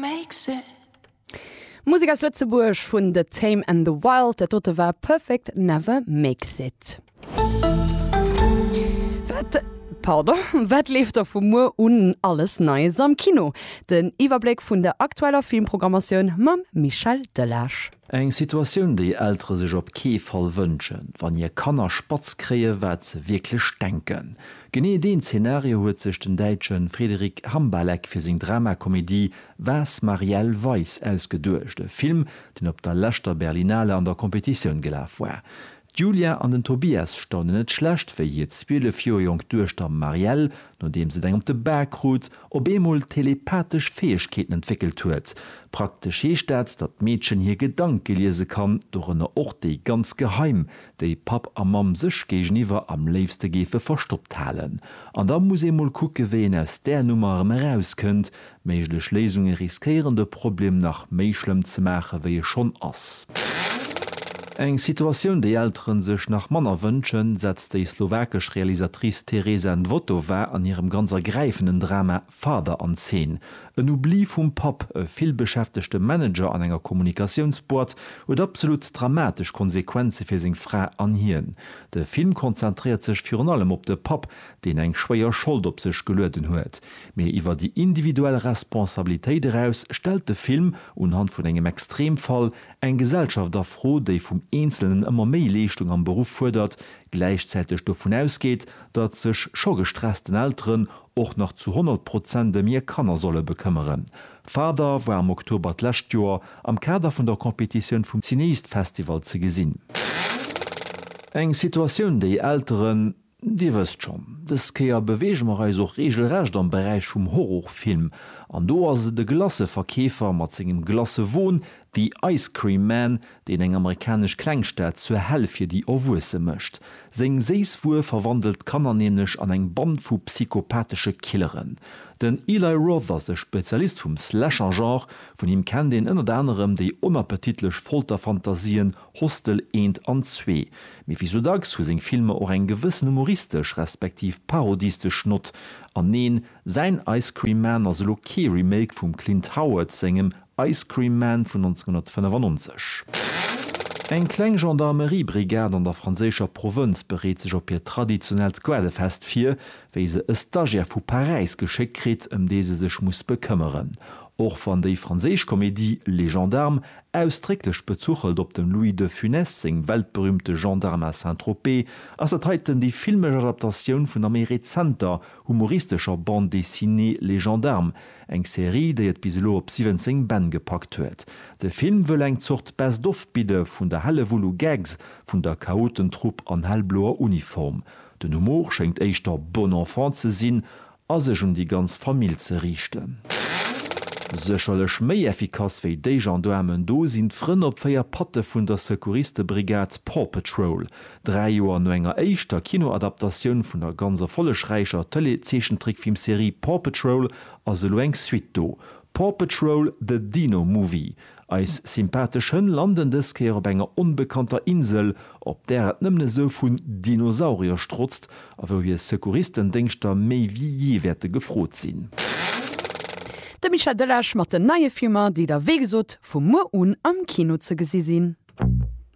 makes it. Musek aus Lëtzebuerg vun The Tame and the Wild, dat dote war Perfect never makes it. Wat, pardon, wat leeft da vu muer un alles Neies am Kino? Den Iwwerbléck vun der aktueller Filmprogrammatioun mam Michel Delage. Eng Situatioun, déi Eltere sech op kee Fall wënschen, wann hir Kanner spatz kréien, wat se wierklech denken. Genee deen Zenario huet sech den Däitsche Frederic Hambalek fir seng Dramakomedie Was Marielle Weiss ausgeduecht, e Film, deen op der leschter Berlinale an der Competitioun gelaf war. D'Julia an den Tobias staunen net schlecht, wéi hir 12 Joer jonk Duechter Marielle, nodeems et eng op de Bak krut, op eemol telepathesch Fäegkeeten entwéckelt huet. Praktesch heescht dat, datt d'Meedchen hir Gedanke liese kann, dorënner och déi ganz geheim, déi Papp a Mamm sech géigeniwwer am léifste géife verstoppt halen. An da muss ee mol kucke wéi een aus där Nummer erëm erauskënnt, Méiglech Léisunge riskéieren de Problem nach méi schlëmm ze maache wéi e schonn ass. Eng Situatioun déi Eltere sech nach manner wënschen, setzt déi slowakesch Realisatrice Tereza Nvotová an hirem ganz ergräifenden Drama Father an Zeen. En Oubli vum Papp, e villbeschäftegte Manager an enger Kommunikatiounsboîte, huet absolut dramatesch Konsequenze fir seng Fra an hien. De Film konzentréiert sech virun allem op de Papp, deen eng schwéier Schold op sech gelueden huet, mee iwwer déi individuell Responsabilitéit eraus stellt de Film, unhand vun engem Extremfall, eng Gesellschaft a Fro, déi vum Eenzelnen ëmmer méi Leeschtung am Beruff fuerdert, gläichzäiteg dovun ausgeet, datt sech scho gestressten Elteren och nach zu 100 Prozent ëm hir Kanner solle bekëmmeren. Father war am Oktober d'lescht Joer am Kader vun der Competitioun vum Cineast Festival ze gesinn. Eng Situatioun, déi Elteren, Dir wësst schonn, dës Kéier beweege mer eis och reegelrecht am Beräich vum Horrorfilm. An do ass et e Glacëverkeefer mat sengem Glacëwon, The Ice Cream Man, deen eng amerikanesch Klengstad zur Hell fir déi Erwuesse mécht. Seng séiss Wuer verwandelt d'Kanner nämlech an eng Band vu psychopathesche Killeren. Den Eli Roth ass e Spezialist vum Slasher-Genre. Vun him kennt een ënnert anerem déi onappetitlech Folterfantasien Hostel eent an zwee, mee wéi sou dacks hu seng Filmer och eng gewëssen humoristesch respektiv parodistesch Nott. An neen, säin Ice Cream Man ass elo kee Remake vum Clint Howard sengem Ice Cream Man vun 1995. Eng kleng Gendarmeriebrigad an der franséischer Provënz bereet sech op hiert traditionellt Goelefest vir, wéi se e Stagiaire vu Paräis geschéckt kritt, ëm dee se sech muss bekëmmeren. Och wann déi franséisch Komedie Les Gendarmes Ausdrécklech bezuchelt op dem Louis de Funès seng weltberüümte Gendarme à Saint-Tropez, ass dat heiten déi filmesch Adaptatioun vun der méi rezenter, humoristescher Bande dessinée Les Gendarmes, eng Serie, déi et bis elo op 17 Bänn gepackt huet. De Film wëll eng Zort Best of bidde vun der Hellewull u Gags vun der Chaotentrupp an hellbloer Uniform. Den Humor schéngt éischter bon enfant ze sinn, a sech un déi ganz Famill ze riichten. Sécherlech méi effikass wéi déi Gendaarmen do sinn d'Frënn op 4 Patte vun der Secouristebrigade Paw Patrol. Dräi Joer no enger éischter Kinoadaptatioun vun der ganz erfollegräicher Tëleezeechentrickfilmserie Paw Patrol ass elo eng Suite do, Paw Patrol, The Dino Movie. Eis sympathesch Hënn landen dës Kéier op enger onbekannter Insel, op där et nëmmen esou vun Dinosaurier strotzt a wou hir Secouristendéngschter méi wéi jee wäerte gefrot sinn. De Michel Delage mat den neie Filmer, déi da wéi gesot vu muer un am Kino ze gesi sinn.